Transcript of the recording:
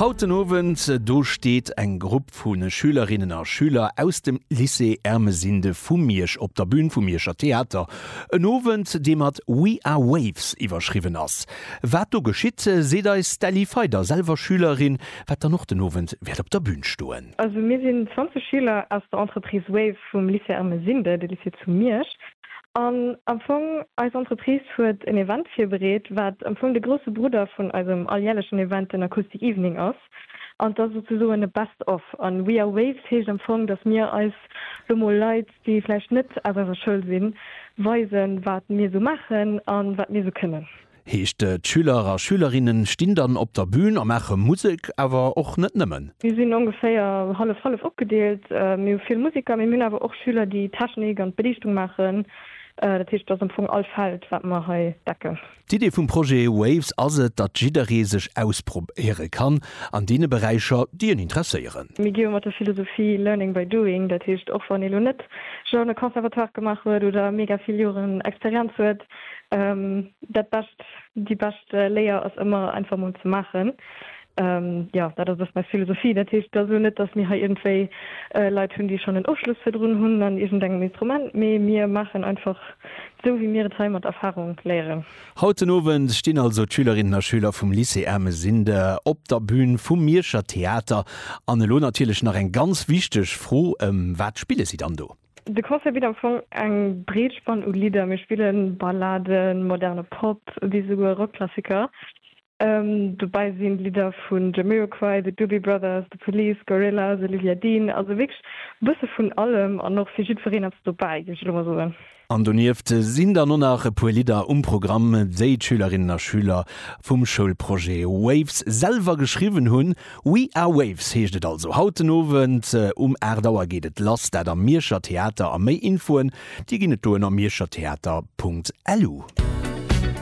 Haut den Owend do steet eng Grupp vu Schülerinnen a Schüler aus dem Lycée Ermesinde vu Miersch op der Bün vum Mierscher Theater. En Owend, dee mat We are Waves iwwerschriwwen ass. Wat do geschitt, seet eis d'Elly Feider, selwer Schülerin, wat dann och den Owend wäert op der Bün stoen. Also mir sinn 20 Schüler aus der Entreprise Wave vum Lycée Ermesinde, de Lycée zu Miersch. An am Fong, eis Entreprise huet en Event virbereet, wat am Fong de grousse Brudder vun eisem alljärlechen Event, den Acoustic Evening ass. An et ass souzesoen e Best of. An We Are Waves heescht am Fong, dass mir eis lo mol Leit, déi vläicht net aus eiser Schoul sinn, weisen, wat mir sou maachen a wat mir sou kënnen. Heescht et, d'Schüler a Schülerinne stinn dann op der Bün a maache Musek, awer och net nëmmen. Mir sinn ongeféier hallef-hallef opgedeelt, mir hu vill Musiker, mee mir hunn awer och Schüler, déi d'Technik an d'Beliichtung maachen. Dat heescht, et ass am Fong all Feld, wat mer hei decken. D'Idee vum Projet Waves ass et, datt jidderee sech ausprobéiere kann an deene Beräicher, déi en interesséieren. Mir gi jo mat der Philosophie Learning by doing. Dat heescht, och wann ee lo net Jeu an der Conservatoire gemaach huet oder mega vill Joren Experienz huet, Dat bescht, déi bescht Léier ass ëmmer einfach mol ze maachen. Jo, dat ass och meng Philosophie. Dat heescht also net, datt mir hei iergendwéi Leit hunn, déi schonn en Ofschluss virdrun hunn an iergendengem Instrument, mee mir maachen einfach esou, wéi mir et hei mat Erfarung léieren. Haut den Owend stinn also d'Schülerinnen a Schüler vum Lycée Ermesinde op der Bün vum Mierscher Theater. An elo natierlech nach eng ganz wichteg Fro, Ëm wat spille si dann do? De Concert bitt am Fong eng breet Spann u Lidder, mir spillen Balladen, moderne Pop bis esouguer Rockklassiker. Dobäi sinn Lidder vun Jamiroquai, The Doobie Brothers, The Police, Gorillaz, Olivia Dean, also wierklech bësse vun allem an och fir jiddwereen eppes dobäi, géif ech elo mol soen. An donieft sinn dann och nach e puer Lidder um Programm, déi d'Schülerinnen a Schüler vum Schoulprojet Waves selwer geschriwwen hunn We are Waves heescht et also. Haut den Owend um 8 Auer geet et lass, dat am Mierscher Theater. A méi Infoen, dir ginn et do ënner mierschertheater.lu.